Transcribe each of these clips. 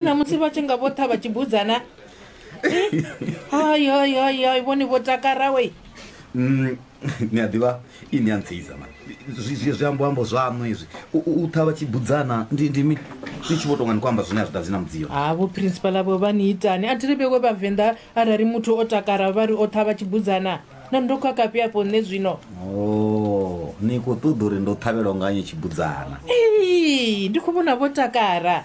na musi vha tshi nga vho tha vha tshi budzana ayoyoyoy vhoni vho takara we mm, ni a ḓivha ini a ntseiza ma zwi ambo ambo zwaṋu izwi u tha vha tshi budzana ndi ndimi ni tshi vho tonga ni khou amba zwine a zwi ḓadzi na mudziyo ha vho principal avo vha ni itani a thi ri vhewe vhavenḓa arali muthu o takara vha ri o tha vha tshi budzana na ndo khakafhi afho nṋe zwino oh, ni khou ṱoḓa uri ndo ṱhavhelwa nga nyi tshi budzana ndi khou vhona vho takara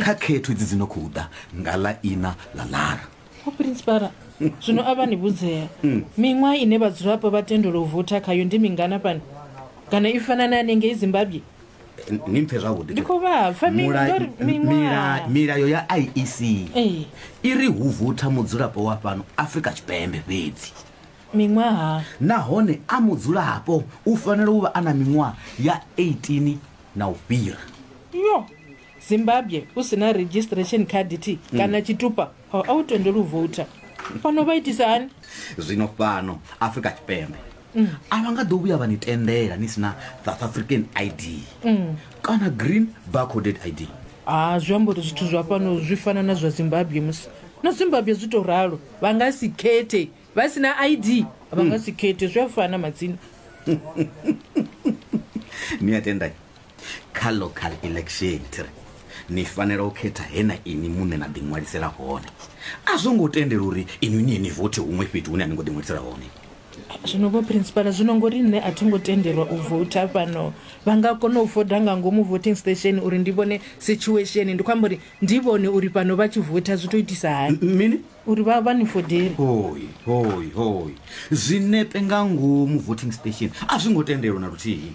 kha khetho idzi dzi no khou ḓa nga ḽa ina ḽa lara o principala zwino a vha ni vhudzea miṅwaha ine vhadzulapo vha tendelwa u votha khayo ndi mingana fhano kana i fana na hanengei zimbabwe Eh, ni mpfe zwavhuḓi Ndi khou vha pfa, mi- Mula- ndo ri miṅwaha. mila- milayo ya iec Ee. i ri hu votha mudzulapo wa fhano afrika tshipembe fhedzi miṅwaha nahone a mudzulapo u fanela u vha a na miṅwaha ya 18 na u fhira. Nyo! Zimbabwe u si na registration card thi hmm. kana tshitupa a u tendeli u vouta fhano vha itisa hani zwino fhano afrika tshipembe hmm. a vha nga ḓo vhuya vha ni tendela ni si na south african id hmm. kana green barcoded id a zwi amba uri zwithu zwa fhano zwi fana na zwa zimbabwe musi na zimbabwe zwi to ralo vha nga si khethe vha si na id vha nga si khethe zwi a fana madzina ni a tenda kha local election thiri ni fanela u khetha he na ini muṋe na ḓiṅwalisela hone a zwo ngo tendela uri inwi ni ye ni vote huṅwe fhethu hune a ni ngo ḓiṅwalisela hone zwino vho principala zwino ngori nṋe a thi ngo tendelwa u vouta fhano vha nga kona u voda nga ngomu voting station uri ndi vhone situation ndi khou amba uri ndi vhone uri fhano vha tshi vouta zwi to itisa hani mini uri vha vha ni fodele hoi hoi hoi zwinepe nga ngomu voting station a zwi ngo tendelwa na luthihi